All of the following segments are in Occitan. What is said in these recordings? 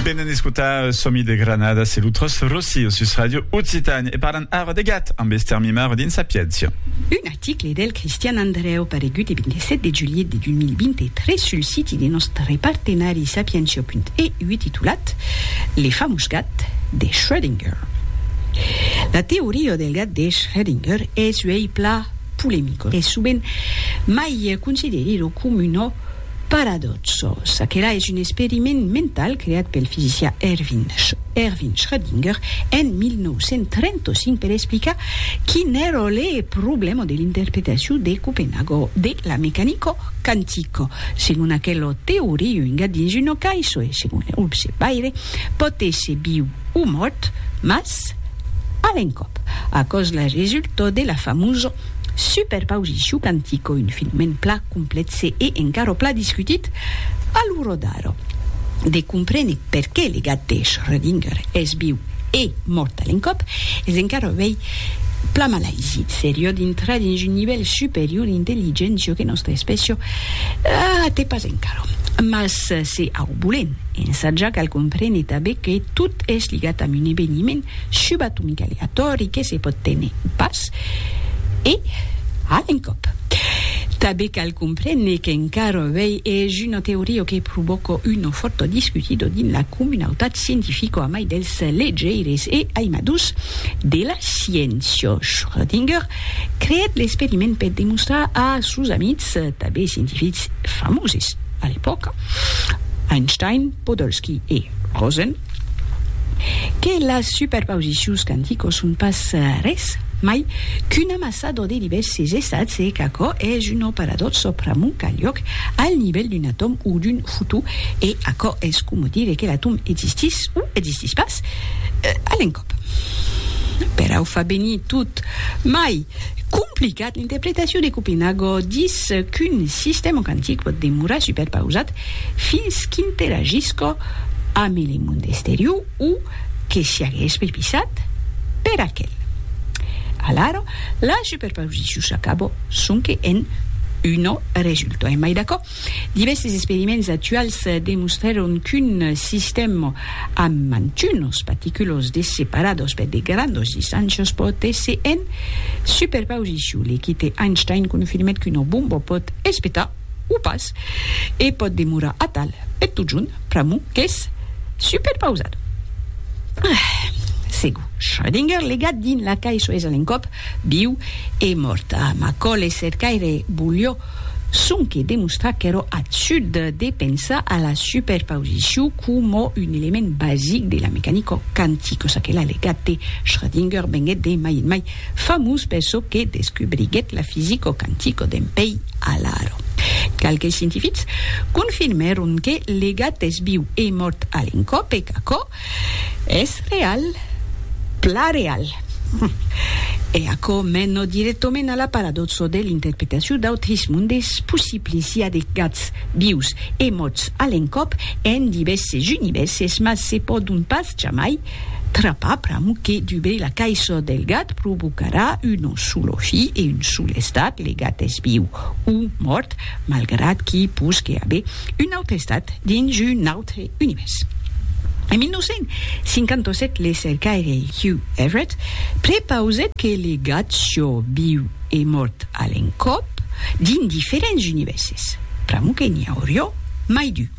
Venen escotar Somi de Granada, se lo tros Rossi o sus Radio Occitània e parlan ara de gat amb Esther Mimaro dins Sapiéncia. Un article del Cristian Andrèu paregut e 27 de julhet de 2023 sul siti de nòstre partenari sapientia.eu titulat Le famós gat de Schrödinger. La teoria del gat de Schrödinger es uèi plan polemica e sovent mai considerida coma una Paradòxo, çaquelà es un experiment mental creat pel fisicià Erwin Schrödinger en 1935 per explicar quin èra le problèma de l'interpretacion de Copenhago de la mecanica quantica. Segon aquela teoria, un gat dins una caissa e, segon le observaire, pòt èsser viu o mòrt, mas a l'encòp. Aquò's la resulta de la famosa Super pausissiu cantico, un filmèn pla complètze e encara pla discutit a lo rodar. De comprene perqué le gat de Schrödinger es viu e mòrt a l'encòp es encara uèi pla malaisit. Serió dintrar dins un nivèl superior d'intelligéncia que nòstra espècia até pas encara. Mas se au bolen ensajar cal comprene tanben que tot es ligat amb un eveniment, subatomic aleatòri que se pòt téner pas, e a l'encòp. Tanben cal comprene qu'encara avei es una teoria que provòca una fòrta discutida dins la comunautat scientifica amai dels legeires e aimadors de la sciéncia. Schrödinger creèt l'experiment per demostrar a sos amics, tanben scientifics famoses a l'epòca, Einstein, Podolsky e Rosen, Que las superpausicions quanticos son pas res mai qu'un amassador de divèrses estats e qu'aquò es un operadorso pr'amont qu'a liòc al nivèl d'un atòm o d'un fotó e aquò es coma dire que l'atòm existís o existís pas a l'encòp. Perau fa venir tot mai complicat. L'interpretacion de Copenago dis qu'un sistèma quantic pòt demorar superpausat fins qu'interagisca amb le monde exterior o que siagues prepisat per aquel. Alara, la superpausicion s'acaba sonque en un resultat. Emai d'aquò, divèrses experiments actuals demostrèron qu'un sistèm amb mantunos particulos de separados per de grandos distàncias pòt èsser en superpausicion. L'equite Einstein confirmèt qu'una bomba pòt espetar o pas, e pòt demorar atal per totjorn, pr'amor qu'es superpausat. Ah! Segur, Schrödinger, legat dins la cai soes a l'encòp, viu e mòrt. Ah, Macaulay cercaire volió sonque demostrar qu'èra absurd de pensar a la superpausicion coma un element basic de la mecanica quantica, çaquelà legat de Schrödinger venguèt de mai en mai Famós per çò que descubriguèt la fisico quantico d'en pei Alaro. Qualques scientifics confirmèron que le gat es viu e mòrt a l'encòp e qu'aquò es real, plan real. E aquò mena dirèctament a la paradòxa de l'interpretacion d'autres mondes possibles, i a de gats vius e mòrts a l'encòp en divèrses univèrses, mas se pòdon pas jamai Trapar pram que dubei la caisson del gat provocarà un onsolofi e un solestat, le gat es viu o mòrt, malgrat qu'i posque aver un aute estat dins un aute univèrs. En 1957 le cercaire Hugh Everett prepausèt que le gat sió viu e mòrt a l'encòp dins diferents univèrses, pr'amor que n'i aurió mai d'un.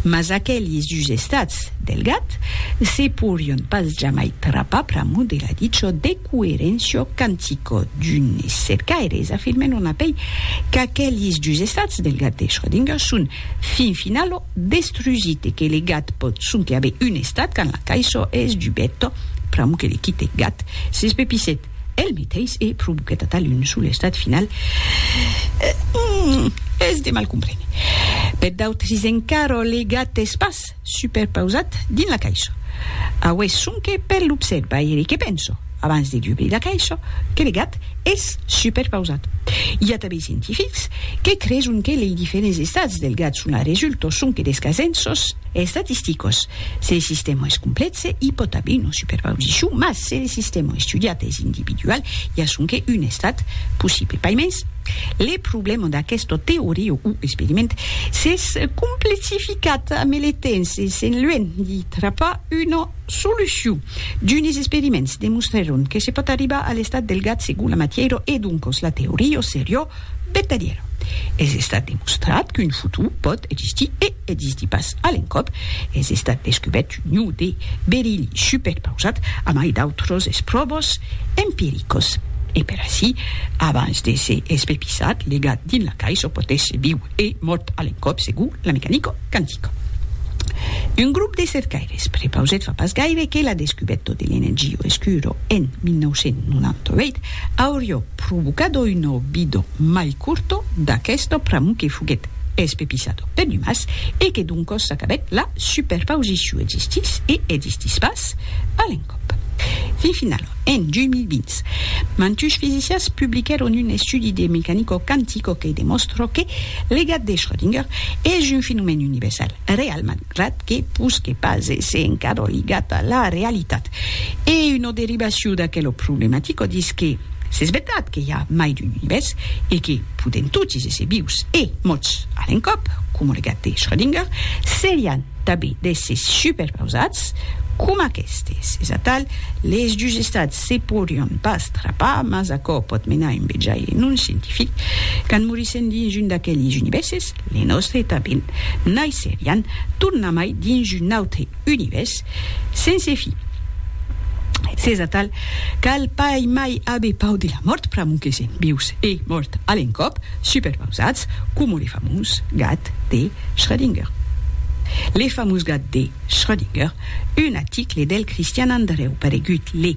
Mas aquelis dus estats Del gat, se porion pas jamai trapar pr'amor de la dicho de coerencio cantico d'unes cercaires afirmen on apei qu'aquelis dus estats del gat de Schrödinger son fin finalo destrusit e que le gat pòt sonque aver un estat quand la caisò es dubet pr'amor que le quite gat s'espepissèt el meteis e provoquèt atal un sol estat final es de mal comprene per d'autres encara le gat es pas superpausat dins la caisha. Aué sonque per l'observaire que penso, abans de dubrir la caisha, que le gat es superpausat. I a tanben scientifics que creson que lei diferents estats del gat son a resulto sonque des casenços estatisticos. Se le sistèma es complètze, i pòt aver una superpausicion, mas se le sistèma estudiat es individual, i a sonque un estat possible. Paimens, Le problèma d'aquesta teoria o experiment s'es complexificat ame le temps e se'n luènh di trapar una solucion. D'unes experiments demostrèron que se pòt arribar a l'estat del gat segon la matièra e doncas la teoria seriá vertadièra. Es estat demostrat qu'un futur pòt existir e. E dis di pas a l'encòp, es estat descubèrt un iu de berilh supèc pausat, amai d'autros espròvos empiricos. E per aicí, abans de se espepissat, legat dins la cais o potètz viu e mòrt a l'encòp segur la mecanico quantica. Un grop de cercaires prepausèt fa pas gaire que la descubèto de l'energio escuro en 1998 aurió provocado un obido mai curto d'aquesto pr'amor que foguèt espepissado per numas e que doncos s'acabèt la superpausiciu existís e existís pas a l'encòp. Fin finala, en 2020, mantush fisicians publiquèron un estudi de mecanico quantico que demòstra que legat de Schrödinger es un fenomèn universal, realman. Ret que posque pas èsser encara ligat a la realitat. E una derivacion d'aquela problematica dís que s'es vertat que i a mai d'un univèrs e que podèm totis èsser vius e mòrts a l'encòp, coma le gat de Schrödinger, serián tanben d'èssers superpausats coma aquestes. Es atal, les dus estats se podrián pas trapar, mas aquò pòt menar a un vejaire non scientific. Quand morissèm dins un d'aqueles univèrses, Les nòstre tanben naisserián tornamai dins un autre univèrs sense fi. S'es atal, cal pas mai aver pau de la mòrt pr'amor que sèm vius e mòrt a l'encòp, superpausats coma le famós gat de Schrödinger. Le famós gat de Schrödinger, un aticle del Cristian Andrèu paregut le